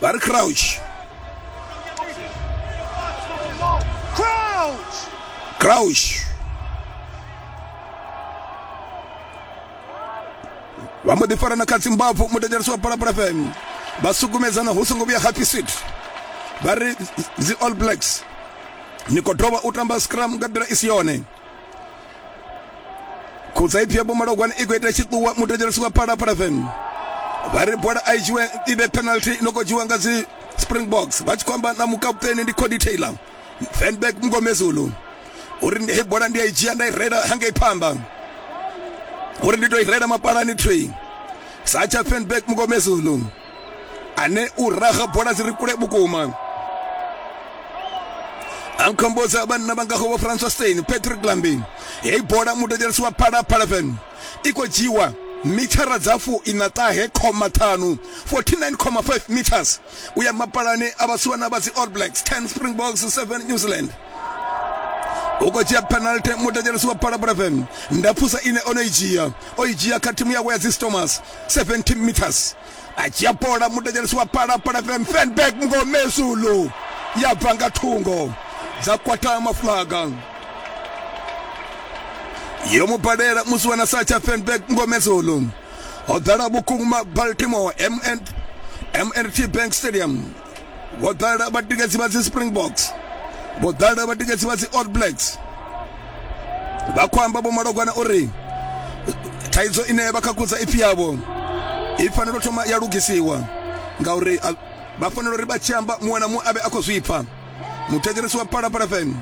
Barry Crouch. Crouch. vha mbo ḓi farana kha dzimbabvu mudedzereso wa palapala fm vha sukumedzana hu songo vhuya happy seat vha ri dzi all blacks ni khou dovha u tamba scrum nga nḓila i si yone khutsa ipfhi ya bomalogwana i khou ita tshiṱuwa mutedzhela swika phalaphala fm vha ri bola a i dzhiwe i vhe penalty i no khou dzhiwa nga dzi springboks vha tshi khou amba na mukaputeni ndi cody taylor fanback mngomezulu uri ndi- hei bola ndi a i dzhia nda i rela hangei phanḓa uri ndi tou i rela mapalani tree satsha fanback mngomezulu ane u raga bola dzi ri kule vhukuma a nkhombodza vhanna vha ngaho vho francois stein patrick lambin heyi bola mudedzelisi wa phala palaven i khou dzhiwa mithara dza fu ina ṱahe khoma ṱhanu 49,5 meters u ya mapalani a vhasiwana vha dzi all blacks 10 springboks 7 new zealand u khou dzhia penalty mudedzelisi wa phala palaven ndapfusa ine o no i dzhia o i dzhia kha thimu yawe ya dzi stomas 70 meters a dzhia bola mudedzhelesi wa pala pala van fenberg mungomezulu ya bva nga thungo dza kwata mafulaga yo mu balela musi wana sa tsha fenberg mungomezulu ho ḓala vhukuma baltimore mnt bank stadium vho ḓala vhatikedzi vha dzi springboks vho ḓala vhatikedzi vha dzi all blacks vha khou amba vho malogwana uri thaidzo ine vha khakhudza ipfi yavho i fanela u thoma ya lugisiwa ngauri a- vha fanela uri vha tshi amba muṅwe na muṅwe a vhe a khou zwipfa muthetshelesi wa phalaphala fm